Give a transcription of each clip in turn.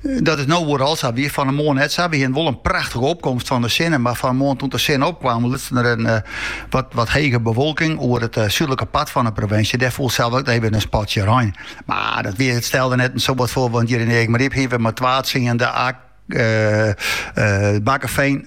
Dat is no oeral sa, wie fan 'e moarn net sa. Wy hiene wol in prachtige opkomst fan de sinne, mar fan 'e moarn doe't de sinne opkwaam lutsen der in wat wat hege bewolking oer it súdlike part fan 'e provinsje. Dêr foel sels ek even in spatsje rein. Mar dat wie, it stelde net in soad foar, want hjir yn Eagmaryp hiene we mar twa tsiende, ek Bakkefean.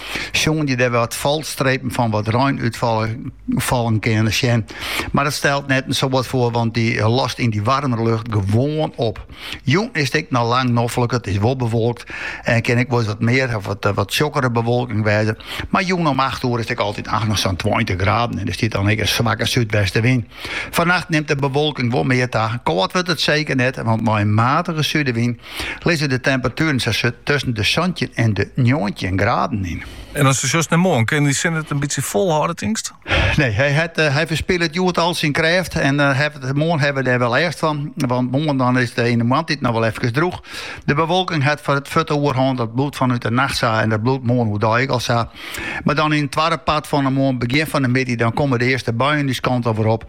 soenen je dêr wat falstrepen fan wat rein útfallen kinne sjen. Mar dat stelt net in soad foar, want dy lost yn dy waarmer lucht gewoan op. Jûn is 't ek noch lang noflik, it is wol bewolkt en kin ek wol wat mear of wat, eh, wat tsjokkere bewolking wêze. Mar jûn om 8 oer is ek altyd echt noch sa'n 20 graden en der stiet dan ek in swakke súdwestewyn. Fannacht nimt de bewolking wol mear ta. Kâld wurdt it seker net, want mei in matige sudewyn lizze de temperatueren sa tusken de santjin en de njoggentjin graden yn. En as de sjochst nei moarn, kin de sinne it in bytsje folhâlde, tinkst? Nee, hy, hat, eh, hy ferspilet hjoed al syn krêft. En uh, eh, moarn hawwe we dêr wol lêst fan. Want moarn dan is it yn de moarntiid noch wol efkes droech. De bewolking hat foar it fuort de oerhân. Dat bliuwt fanút de nacht sa en dat bliuwt moarn oerdei ek al sa. Mar dan yn it twadde part fan 'e moarn, begjin fan de middei, dan komme de earste buien dizze kant oer op.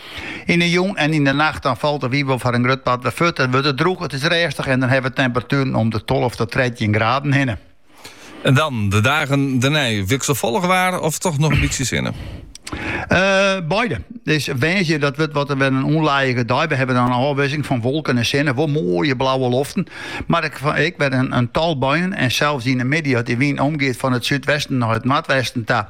Yn 'e jûn en yn 'e nacht dan falt de wyn wol foar in grut part wer fuort. It wurdt der drûch, it is rêstich en dan hawwe we temperatueren om de tolve ta trettjin graden hinne. En dan, de dagen dernei, wikselfollich waar of toch noch in bytsje sinne? Beide. It is woansdei dat wurdt wat wer in ûnlijige dei. We hawwe dan in ôfwisseling fan wolken en sinne, wol moaie blauwe loften, mar ek wer in tal buien en sels yn 'e middei as de wyn omgiet fan it súdwesten nei it noardwesten ta.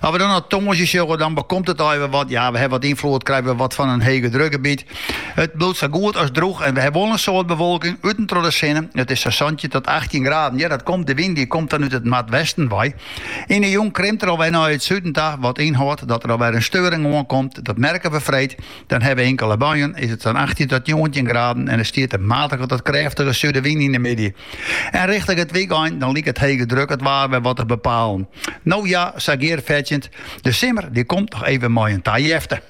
As we dan nei tongersdei sjogge, dan bekomt it alwer wat. Ja, we hawwe wat ynfloed, krije we wat fan in hegedrukgebiet. It bliuwt sa goed as drûch en we hawwe wol in soad bewolking, út en troch de sinne. It is sa santjin tot achttjin graden. Ja, dat komt, de wyn dy komt dan út it noardwesten wei. Yn de jûn krimt er alwer nei it suden ta, wat ynhâldt dat der alwer in steuring oankomt. Dat merke we freed. Dan ha we inkele buien, is it sa'n 18 tot 19 graden en der stiet in matige tot krêftige sudewyn yn de middei. En richting it wykein dan liket hege druk it waar wer wat te bepalen. No ja, sa gearfetsjend, de simmer die komt noch even mei in tajefte.